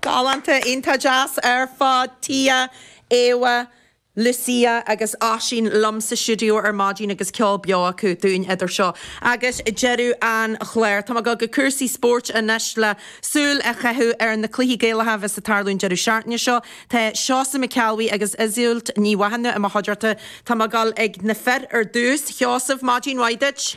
Galánta, iontach deas ar fad. Tia, Éabha, Lucia agus Oisín liom sa stiúideo ar maidin agus ceol beo acu dúinn idir seo agus deireadh an chláir. Tá mé ag dul go cúrsaí spóirt anois le súil a chaitheamh ar na cluichí Gaelacha a bheas ag tarlú an deireadh seachtaine seo. Tá Seosamh Mac Ceallabhuí agus Iseult Ní Mhathúna i mo chuideachta. Tá mé ag dul ag na fir ar dtús. A Sheosaimh, maidin mhaith duit.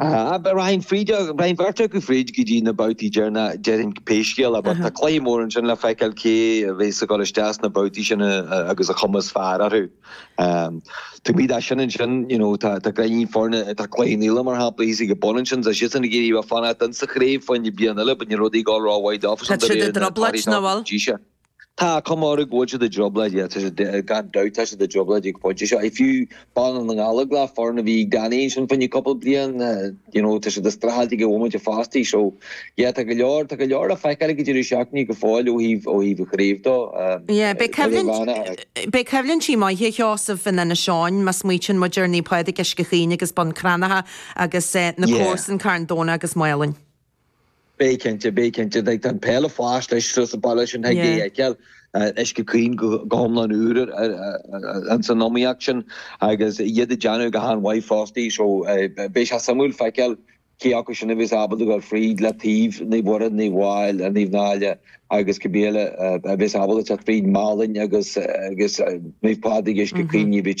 Braitheann fríd, théann beirt acu fríd go dtí na babhtaí deireanacha, déarfainn, pé scéal é, but tá cluiche mór ansin le feiceáil cé a bheas ag dul isteach sna babhtaí sin agus an chuma is fearr orthu. Taobh amuigh de sin ansin, you know, tá gainín foirne, tá Cloich Cheann Fhaola mar shampla thíos ag an bun ansin, tá siadsan ag iarraidh fanacht ins sa chraobh fá choinne bliain eile but níl rudaí ag dul ró-mhaith dófa. Tá siad i dtrioblóid, nach bhfuil? Tá cuma air go bhfuil siad i dtrioblóid, tá siad, gan dabht, tá siad i dtrioblóid ag an phointe seo. I fiú Baile na nGallóglach, foireann a bhí gan aon sin fá choinne cúpla bliain, you know, tá siad ag streachailt ag an bhomaite fosta. So, yeah, tá go leor, tá go leor le feiceáil ag an deireadh seachtaine go fóill ó thaobh, ó thaobh an chraobh do. Yeah, beidh coimhlint, beidh coimhlintí maith a Sheosaimh in Inis Eoghain má smaoitíonn muid ar Naomh Pádraig, Uisce Chaoin agus Bun Cranncha agus na Yeah. comharsain Carn Domhnach agus Málainn. Beidh cinnte, beidh cinnte, tá an pheil ag fás leis sruth sa bpeil sin thig é a fheiceáil, Uisce Chaoin go hiomlán úr ins an iomaíocht sin agus iad ag déanamh go han-mhaith fosta so beidh sé suimiúil feiceáil cé acu sin a bheas ábalta a ghabháil fríd le taobh Naomh Muire, Naomh Mháel, Naomh Náille agus cibé eile a bheas ábalta a theacht fríd, Málainn agus Naomh Pádraig Uisce Chaoin ní bhíte.